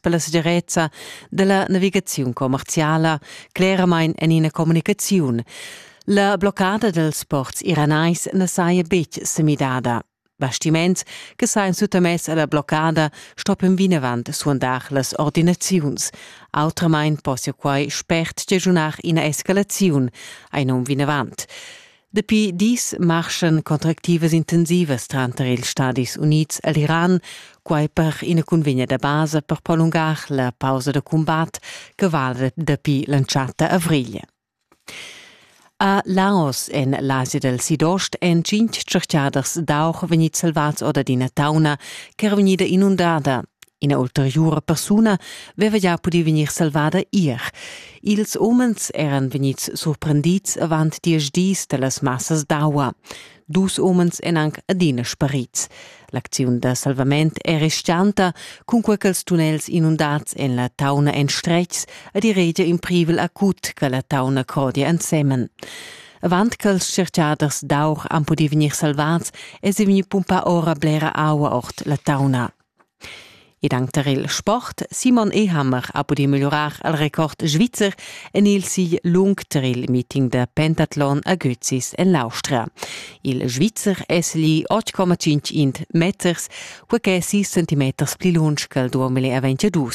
per la segirezza della navigaziun commerciala cleramain en ina communicaziun. La bloccada dels ports iranais na saja betg semidada. Bastiments che sajan suttamess alla bloccada stoppen vinavant suandar las ordinaziuns. Autramain possia quai spert stagiunar ina escalaziun, ein um vinavant. Dapi dis marschan contractivas intensivas tranter ils Stadis Unids e l'Iran, quai per ina cunvegna da basa per prolungar la pausa da cumbat che vala dapi l'entschatta avrigl. A Laos en l'Asia dal Sidost èn tschintg tschertgaders d'aur vegnids salvads or d'ina tauna ch'era vegnida inundada. Ina ulteriura persuna aveva gia pudì vegnir salvada ier. Ils umens eran vegnids surprendids avant diesch dis da las massas d'aua. Dus umens èn anc adina sparids. L'acziun da salvament è restanta, cunquai ch'ils tunnels inundads en la tauna èn stretgs ed i regia in privel acut che la tauna crodia ensemen. Avant ch'ils tschertgaders d'aur han pudì vegnir salvads, èsi vegnì pumpà ora blera aua ord la tauna. Ed anc tar il sport. Simon Ehammer ha pudì megliurar il record svizzer en il sigl lung tar il meeting da pentatlon a Götzis en l'Austria. Il Svizzer è segli 8,5 meters, quai ch'è 6 centimeters pli lunsch che il 2022.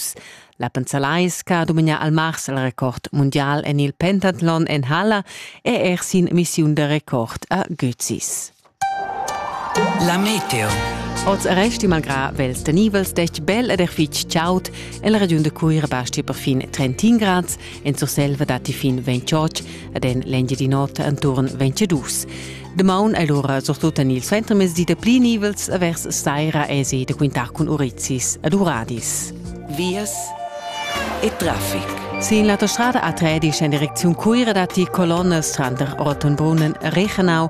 La Pensalais che ha domignà al mars il record mundial en il pentatlon en halla è er sin missiun da record a Götzis. La meteo. Oz resti malgrà vels tenivels detg bel ed er fitg chaud. En la regiun da Cuira basti perfin 31 grads, en Surselva datti fin 28 ed en l'Engiadin'Ota enturn 22. Damaun è l'ora surtut en il suentermezdi da pli nivels e vers saira èsi da quintar cun urizis ed uradis. Vias e traffic. Sin l'autostrada A13 en direcziun Cuira datti colonnas tranter Ortenbrunnen e Rechenau